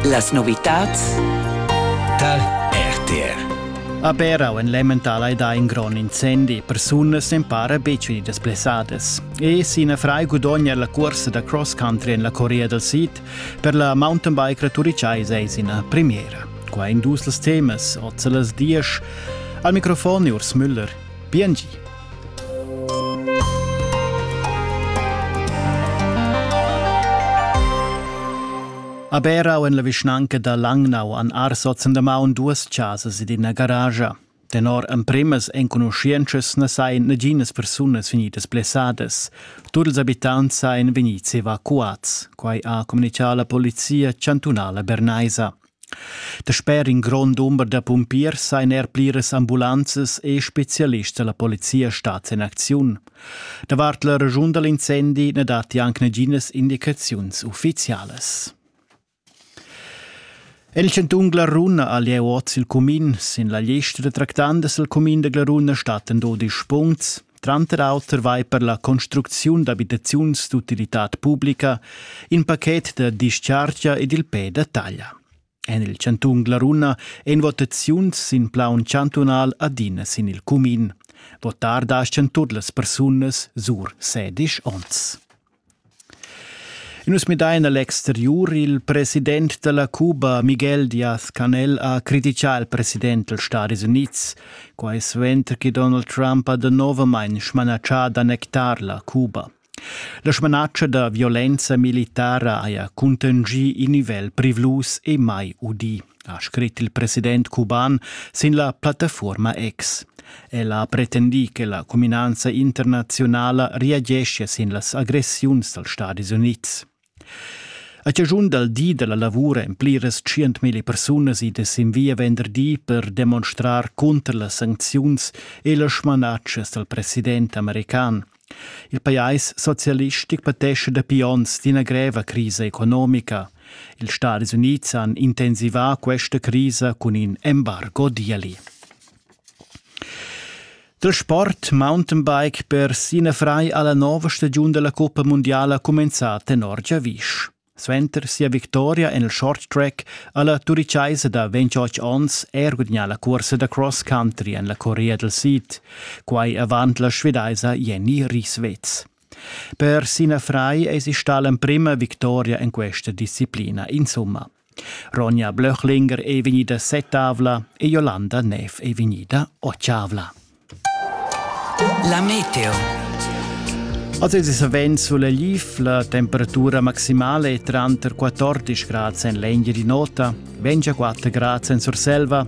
Las novitads tar RTR. A Berau en l'emmental hai dà in grond incendi. Persunas empara betg vegnidas blessadas. E sin frai gudogna la cursa da cross country en la Corea dal Sid per la mountain bike turitschais eis ina premiera. Qua in dus temas, oz las diesch. Al microfon Urs Müller. Biengi. A Berau en la vischnanca da Langnau han arsozen damaun duas chasas ed ina garage. Tenor emprimas enconuschientschas na sain naginas persunas vegnidas blessadas. Tut ils abitants sain vegnids evacuats. Quai ha communitgà la polizia chantunala bernaisa. Dasper in grond dumber da pumpiers ein er pliras ambulanzas e specialists dalla polizia stats en acziun. Davart la raschun da l'incendi na datti anc naginas indicaziuns uffizialas. En il chantun Glaruna ha lieu oz il cumin. Sin la lista da tractandas al cumin da Glaruna stattan dodisch puncts. Tranter auter vai per la construcziun d'abitaziuns d'utilitad publica in paket da dischargia ed il pe da taglia. En il chantun Glaruna èn votaziuns sin plaun chantunal adina sin il cumin. Votar daschan tut las persunas sur sedisch onns. Nus midain a l'exteriur. Il president da la Cuba, Miguel Diaz-Canel, ha criticà il president dals Stadis Unids. Quai suenter che Donald Trump ha danovamain smanatschà d'annectar la Cuba. La smanatscha da violenza militara haja cuntengì in nivel privlus e mai udì, ha scrit il president cuban sin la plattafuorma X. Ella ha pretendì che la cuminanza internaziunala reageschia sin las agressiuns dals Stadis Unids. A chaschun dal di da la lavura èn pliras tschientmilli persunas idas sin via venderdi per demonstrar cunter las sancziuns e las smanatschas dal president american. Il pajais socialistic patescha dapi onns d'ina greva crisa economica. Ils Stadis Unids han intensivà questa crisa cun in embargo d'ieli. Da sport mountainbike per Sina Frei alla nova stagiun della Coppa Mondiala cumenzà tenor giavisch. Suenter sia victoria en il short track alla turichaisa da 28 onns er gudagnà la cursa da cross country en la Corea del Sid, quai avant la svedaisa Jenny Rieswitz. Per Sina Frei es ista l'emprima victoria en questa disciplina insumma. Ronja Blöchlinger ei vegnida setavla e Jolanda Neff ei vegnida otschavla. La meteo. Az es savens sulla lif la temperatura maximale è tranter 14 grad en l'engeri nota, 24 grad en Surselva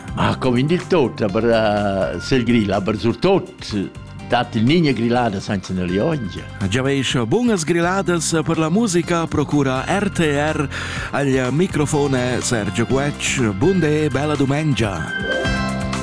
Ah, come in dil tot, aber uh, sel grill, aber surtot dat il niña grillada senza ne liongia. Già veis bunas grilladas per la musica procura RTR al microfone Sergio Guecc. Bunde e bella domenica.